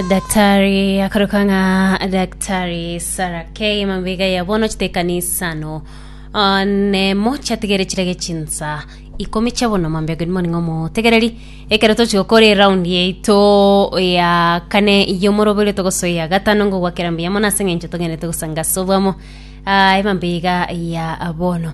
Daktari akaroka ng'a Daktari Sarah K mambega ya bono chitekanisano Ah, nemo chiatigere chirege chinsa ikomi chia bono mambia good morning omotegereri ekero tochia gokora eround yaito ya kane yomorobere togosoya gatano ngogwakera mbiyamo nase eng'encho togenderete gosanga sobwamo Ah, emambega ya bono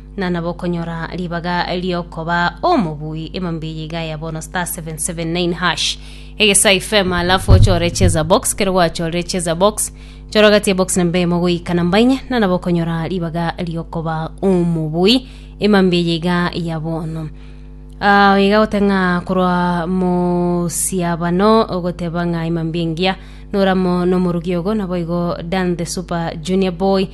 na nabokonyora ribaga riokoba omobui emambia eyio iga ya bono star 779 hash egesa ifema alafu ochore cheza box kero gwachorire cheza box chora gati ya box namba emo goika namba inye na nabokonyora ribaga riokoba omobui emambia eyio iga ya bono Ah, iga goteng'a korwa mosiabano ogoteba ng'a imambia engiya noramo nomorugi ogo naboigo dan the super junior boy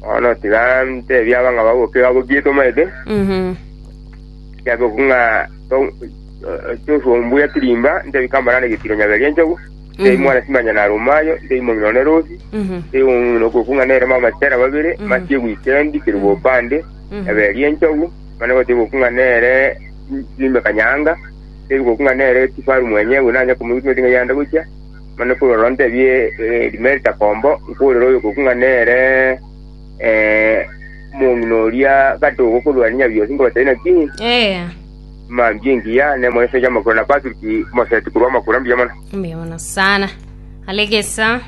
Bono tiga ntebie abang'aba abo kera bokie tomaete, kiagekwo ng'a to- eh, tosombu ya tirimba, ntebie kamara na getiro nyabere enchogu, ntebie mwana simanya na rumayo, ntebie momino ne rosi, ntebie momino okoku ng'a nere mama chera babere, masie gwikendi keri bopande, eberi enchogu, mane gote goku ng'a nere ime kanyanga, ntebie goku ng'a nere kifaru mwenyewe nanya komoigwa ng'a yanda gochia, Mani nkoirora ontebie erime ritakombo, nkoirora oyokoku ng'a nere omong'ina oria gati ogokorwania bionsi, nkobatebia naki, Mambia engiya, ne moiseke y'amakura na Patriki omoseti korwa amakura. Mbuya mono. Mbuya mono sana. Alegesa.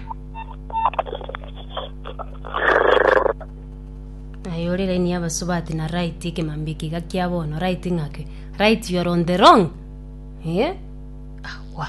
Aye ore laini y'abasubati na right ekemambia eke iga kia bono right ng'ake right you are on the wrong eh? Awa.